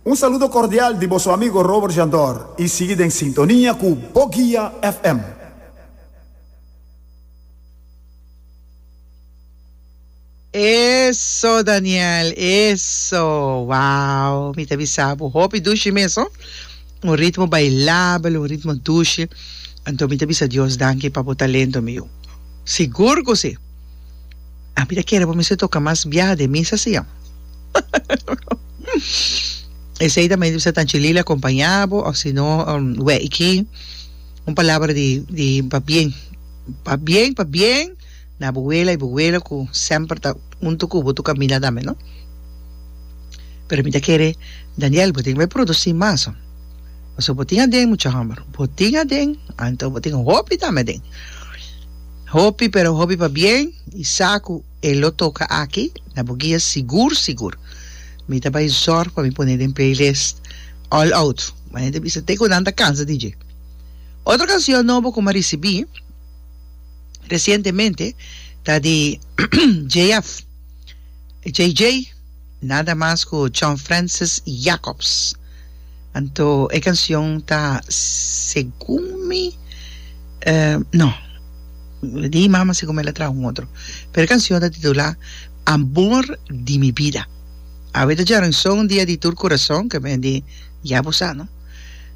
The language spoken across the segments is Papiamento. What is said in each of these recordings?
Un saludo cordial di bo su amigo Robert Jandor y sigui den sintonia cu Bo Guia FM. Eso Daniel eso wow mi ta bisa bo hopi dushi mesun un ritmo bailabel un ritmo dushi anto mi ta bisa Dios danki pa bo talento mi yu sigur cu si. A mi ta kere bo mester toka mas biaha den misa si an. Esei ta mester ta Anchi Lila acompaña bo of si no we iki un palabra di di pa bien pa bien pa bien na bo wela y bo wela cu semper ta hunto cu bo to camina tambe no pero mi ta kere Daniel bo tin bay produci mas ho pasobra bo tin aden mucha homber bo tin aden anto bo tin hopi tambe aden. Hopi pero hopi pabien y sa cu e lo toca aki na bo guia sigur sigur. Mi ta bay zorg pa mi pone den playlist All Out. Ma nan ta bisa te cu nan ta cansa di dje. Otro cancion nobo cu mi a ricibi recientemente ta di JF, JJ. Nada mas ku John Francis Jacobs. Anto e kansion ta Segun mi, no, di mama segun mi el a traha un otro. Pero e kansion ta titulá Amor di mi bida. Awe ta djarenson un dia di tur kurason, ke men di ya bo sa, no?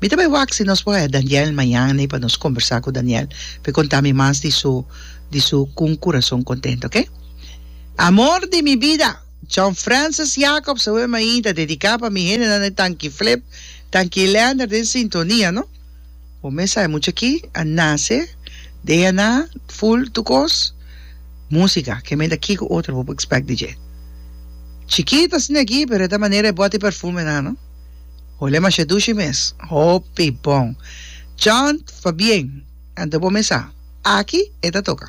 Mi ta bai wak si nos por haña Daniel mañan ei pa nos kombersá ku Daniel pa e konta mi mas di su di su Con un corazón contento, oke? Amor di mi bida. John Francis Jacobs, awe mainta dedica pa mi hendenan de Tanki Flip, Tanki Leander den sintonia no. Bo mes sa e mucha aki a nace DNA full tur cos musica ke men ta kico otro bo por expect di dje. Chikit asina aki pero e ta manera e boti perfume nan no. Hole masha dushi mes. Hopi bon. John, fabien. Anto bo mes sa aki e ta toca.